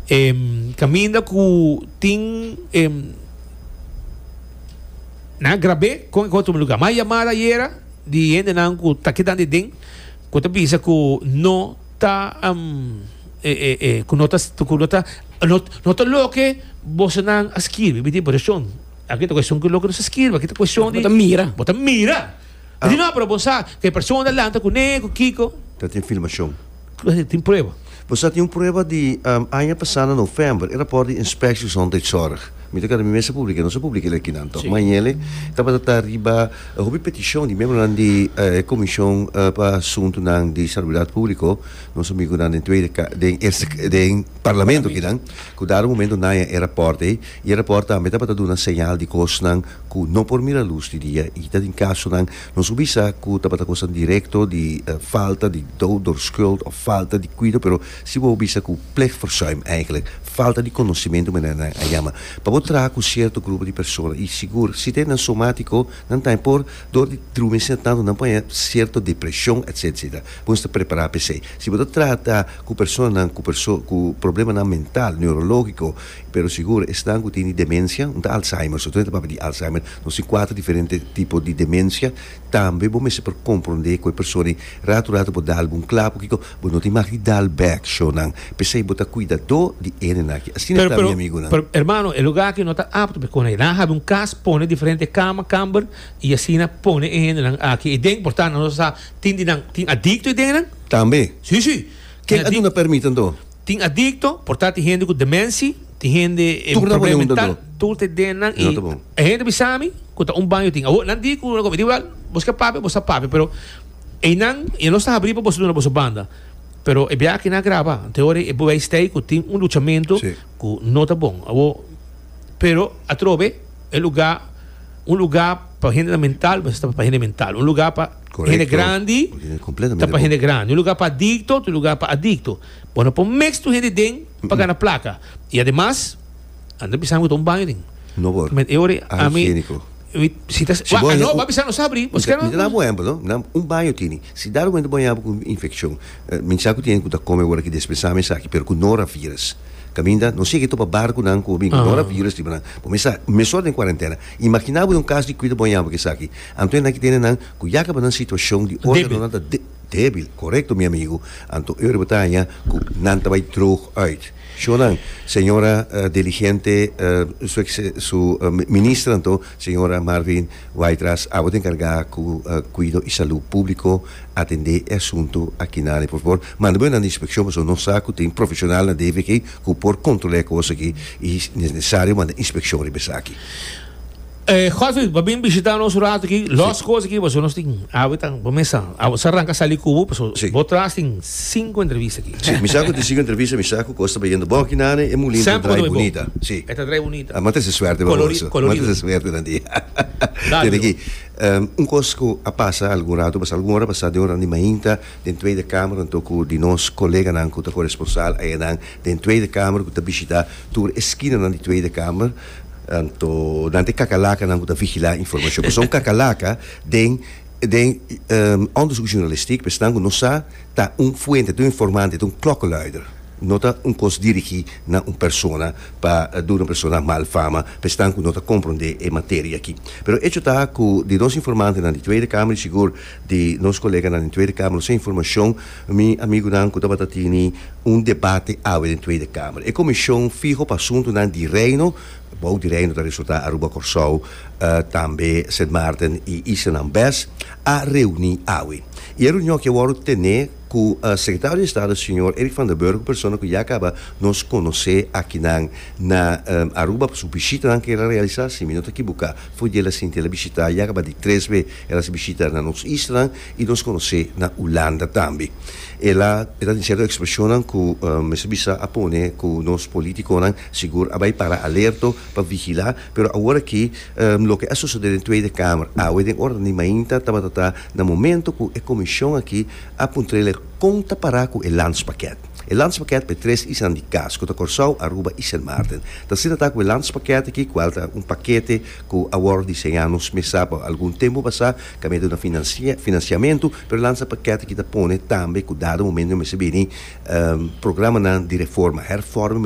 E caminda cu tin e nan grabé con e otro lugar. Mas yamada ayera di hendenan cu ta kedandi den cu ta bisa cu no ta um, e, e, e, cu no ta, cu no ta, no, no ta loke bosonan a skirbi. Mi tin, por esun, aki ta cuestion cu loke nos a skirbi, aki ta cuestion di. Bo ta mira. Bo ta mira. Así no, pero bo sa cu e persona ta lanta cu nee cu kico. Ta tin filmacion. Así tin prueba. Bo sa tin un prueba di aña pasá na november, e raport di Inspectie Gezondheidszorg. Mi ta keda mi mes a publica e, no sa publica el aki nan toch. Ma Agnele tabata ta riba hopi peticion di miembronan di e Comision pa Asuntunan di Salubridad Publico, nos amigunan den Tweede den Eerste den Parlamento aki nan, cu dado momento nan e raport ei. E raport tambe ta pa ta duna señal di kosnan ku no por mira lus di dia i ta den kasonan nos hopi sa ku ta pa ta kosnan direkto di falta di doederskuld òf falta di kuido pero si bo hopi sa ku plichtverzuim eindelijk falta di conocimiento manera nan a yama pa bo traha ku sierto grupo di persona i sigur si ta e nan somatiko nan tambe por dor di drumesnan tantu nan por haña sierto depresion etc etc bo mester prepara p'esei si bo ta trata ku personanan ku ku problemanan mental neurológiko. Pero sigur, esnan ku tin di demensia, un ta Alzheimer, so tambe ta papia di Alzheimer, nos tin kuater diferente tipo di demensia, tambe bo mester por komprondé ku e persona ei, ratu ratu bo dal bo un kla, por kiko? Bo no tin maka di dal bèk shownan, p'esei bo ta kuidadó di e nennan aki, asina ta mi amigunan. Pero, hermano, e lugar aki no ta apto pa e kosnan ei, nan a habi un kas, pone diferente kama, kamber, i asina pone e hendenan aki ei den, por tanto nos a sa tin di nan tin adikto ei den nan? Tambe. Sí, sí. Ken a duna permit anto? Tin adicto, por ta tin hende cu demenci, tin hende e problem mental, tur te den nan y e hende bisami cu ta un baño tin. Awo nan di cu nan come di well, bos ke papia bos ta papia pero eynan ya no sta habri pa boso duna boso banda. Pero e biaha aki nan a graba te ora e bewijs ta ey cu tin un luchamento cu no ta bon. Awo pero atrobe e lugar un lugar pa hendenan mental mester pa hende mental un lugar pa. Hende grandi ta pa hende grandi. Un lugar pa adicto, otro lugar pa adicto. Bo no por mix tur hende den pa gana placa. Y ademas, a no ta bisa mi ta un baño den. No por. Met e ora a mi. Higienico. Si ta, Si bo a no, bo a bisa no sabri. Bo Mi ta dal bo ehempel, no? Mi ta dal, un baño tini. Si dado momento bo a yabi cu un infeccion, mi sa cu tin cu ta come awor aki despensame esaki, pero cu noravirus. Caminda, no sigui topa barconan cu a bin cu noravirus riba nan. Bo mester sa, mester den cuarentena. Imagina bo den un cas di cuida bo a yabi cu esaki. Anto e nan ki tene nan ku yaka pa nan situashon di organonan ta débil, korekto mi amigu, anto e ora bo ta haña ku nan ta bai droog uit. Shonnan, señora deligente, su ex, su minister anto, señora Marvin Waidras, abo ta enkargá ku kuido i salú públiko atendé e asuntu akinane. Por favor, manda bo nan di inspekshon pasobra nos sa ku tin profeshonal na DVG ku por kontrolá e kos aki i si es nesesario manda inspekshon riba esaki. Godfrey, pa bin bishita nos un rato aki, los cos aki, pasobra nos tin awe ta bo mesa, awe sa ranca sali cu bo, pasobra Sí. bo tras tin cinco entrevista aki. Sí, mi sa cu tin cinco entrevista, mi sa cu cos ta bayendo bon aki nan, e mulin ta Sempre drai cos ta bai bon. bunita. Sí. E ta drai bunita. Ah, m'a trece suerte pa Colori- boso. colorido. M'a trece suerte nan di. Dale, Tene aki. Ehm, un cos cu a pasa algun rato, a pasa algun ora pasa den un randi mainta den Tweede Kamer, anto cu di nos coleganan cu ta coresponsal ayanan den Tweede Kamer, cu ta bishita tur esquinanan di Tweede Kamer, Anto nan ta e kakalakanan ku ta vigilá informashon. Esnan ku kakalaka den den òndersuk journalistiek esnan ku nos sa ta un fuente, ta un informante, ta un klokkeluider. No ta un kos dirigí na un persona pa duna un persona mal fama pa esnan ku no ta komprondé e materia aki. Pero echo ta ku di nos informantenan di Tweede Kamer i sigur di nos koleganan den Tweede Kamer nos sa informashon Mi amigunan ku tabata tini un debate awe den Tweede Kamer. E komishon fiho pa asuntunan di Reino, bou di Reino ta resultá Aruba, Kòrsou, tambe Sint Maarten i Islanan bes, a reuní awe. I e reunion aki a wòrdu tené ku Sekretario di Estado señor Eric van der Burg, un persona ku ya kaba nos konosé akinan na Aruba pa su bishitanan ku el a realisá. Si mi no ta kibuká, for di el a sinti el a bishitá ya kaba di tres be el a hasi bishita na nos islanan. I nos conoce na Hulanda tambe. El a el a diciendo expresionnan cu mester bisa a pone cu nos politiconan sigur a bay para alerto pa vigila, pero awor aki loke a sucede den Tweede Kamer awe den ora di mainta tabata ta na momento cu e comision aki a puntrele con ta para cu e landspakket. E landspakket pa e tres islan di cas cu ta Corsou, Aruba y Sint Maarten. Ta asina ta cu e landspakket aki cual ta un pakete cu awor diseña nos mesa pa algun tempo basa Camedo na financiamentu, pero lansa paquete ki ta pone tambe cu dado momento mester bini programanan di reforma, hervorming,